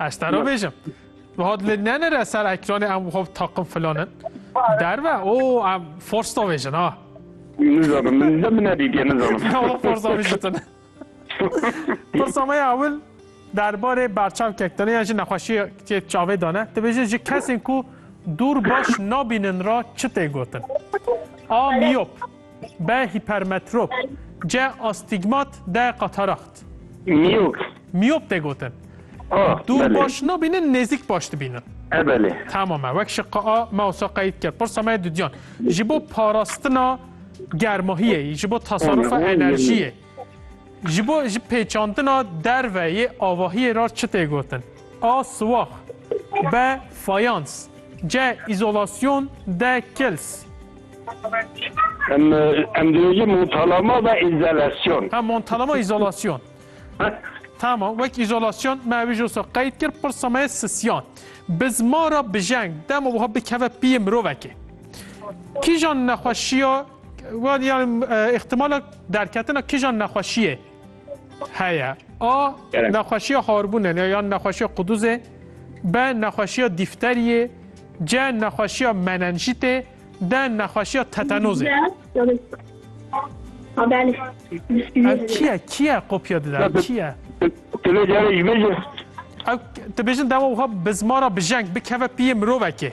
Ez te bêjim. Hat li nenere ser ekranê em xwe takım filanin. Derve o em force da bêjin ha. Nizanim min de min nedîtiye nizanim. Dava force da bêjitin. Pirsa me ya ewil derbarê berçavkek dane ya ji nexweşiyê tê çavê dane. Dibêje ji kesên ku dûr baş nabînin ra çi tê gotin. A miyop. B. Hipermetrop C. Astigmat D. Katarakt Miyop. Miyop tê gotin. A. Dûr Belê. baş nabînin, nêzîk baş dibînin. E belê. Tamam e. Wek şiqa A me wisa qeyîd kir. Pirsa me ye dudiyan. Ji bo parastina germahiyê, ji bo tasarrufa enerjiyê. Ji bo ji pêçandina derve yê avahiyê re çi tê gotin? A siwax B fayans C îzolasyon D kils Em em dibêjin montalama ve îzelasyon. Ha montalama îzolasyon. Tamam, wek îzolasyon me wî jî qeyd kir pirsa me sisyan. Bi ziman re bijeng dema wiha bikeve piyê mirovekê. Kîjan nexweşiya Wan yani ihtimala derketina kijan nexweşiyê heye. A Gerek. nexweşiya harbûne ne yan nexweşiya quduzê, B nexweşiya dîfteriyê, C nexweşiya menenjîtê, D nexweşiya tetanozê. Ev çi ye? Kî ye kopya dide? Ev çi ye? Tu lê carê ji min jî Ew dibêjin dewa wiha bi zmara bijeng bikeve piyê mirovekê.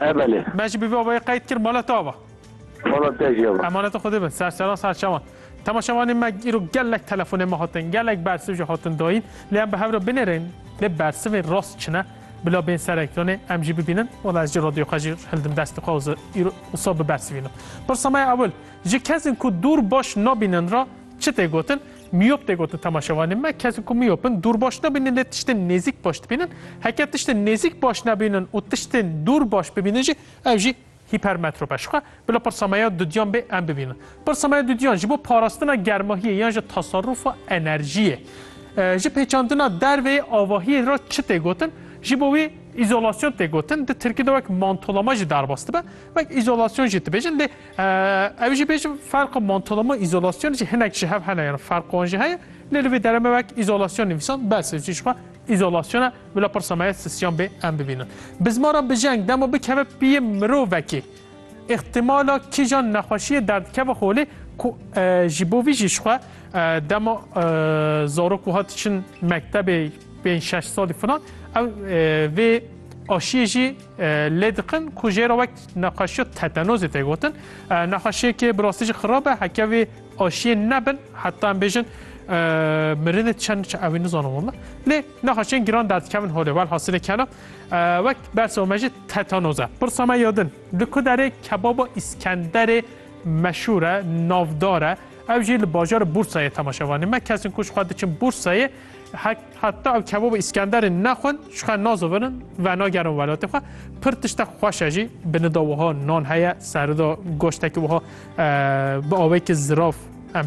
E belê. Me jî bi vî avayê qeyd kir mala te ava. Mala te jî ava. Emaneta Xwedê be, serçeran serçevan. Temaşevanê me îro gelek telefonên me hatin, gelek bersiv jî hatin dayîn. Lê em bi hev re binêrên lê bersivên rast çi ne bila bên ser ekranê em jî bibînin. Wala ez jî radyoya xwe jî hildim destê xwe û îro wisa bibersivînim. Pirsa me ya ewil, ji kesên ku dûr baş nabînin re çi tê gotin? Miyop tê gotin temaşevanên me, kesên ku miyop in dûr baş nabînin lê tiştên nêzîk baş dibînin. Heke tiştên nêzîk baş nabînin û tiştên dûr baş bibînin jî ev jî hîpermetrop e. Jixwe bila pirsa me ya dudiyan bê em bibînin. Pirsa me ya dudiyan ji bo parastina germahiyê yan ji teserrufa enerjiyê. Ji pêçandina dervê yê avahiyê re çi tê gotin? Ji bo wî îzolasyon tê gotin. Di tirkî de wek mantolama jî derbas dibe, wek îzolasyon jî dibêjin lê Ew jî bêjim ferqa mantolama û îzolasyonê jî hinek ji hev hene yan ferqa wan jî heye. Lê li vê dere me wek îzolasyon nivîsan bes e. Jî jixwe îzolasyon e bila pirsa me ya sisyan bê em bibînin. Bi zimana bijeng dema bikeve piyê mirovekê îxtîmala kîjan nexweşiyê derdikeve holê ku ji bo vî jî jixwe dema zarok wiha diçin mektebê pênc şeş salî filan ew vê aşiyê jî lê dikin ku jê re wek Nexweşiya tetanozê tê gotin. Nexweşiyekê bi rastî jî xirab e heke vê aşiyên nebin heta em bêjin mirinê çend çi evî nizanin walla. Lê nexweşiyên giran derdikevin holê wel hasilê kena wek bersa me jî tetanoz e. Pirsa me yadin li ku derê kebaba îskenderê meşhûr e, navdar e. Ew jî li bajarê Bûrsayê temaşevanî me. Kesên ku ji xwe diçin Bûrsayê Heta ew kebabê Îskenderê nexwin ji xwe nazivinin venagerin welatê xwe. Pir tiştek xweş e jî bi nida wiha nan heye serida goştekî wiha bi awekî ziraf em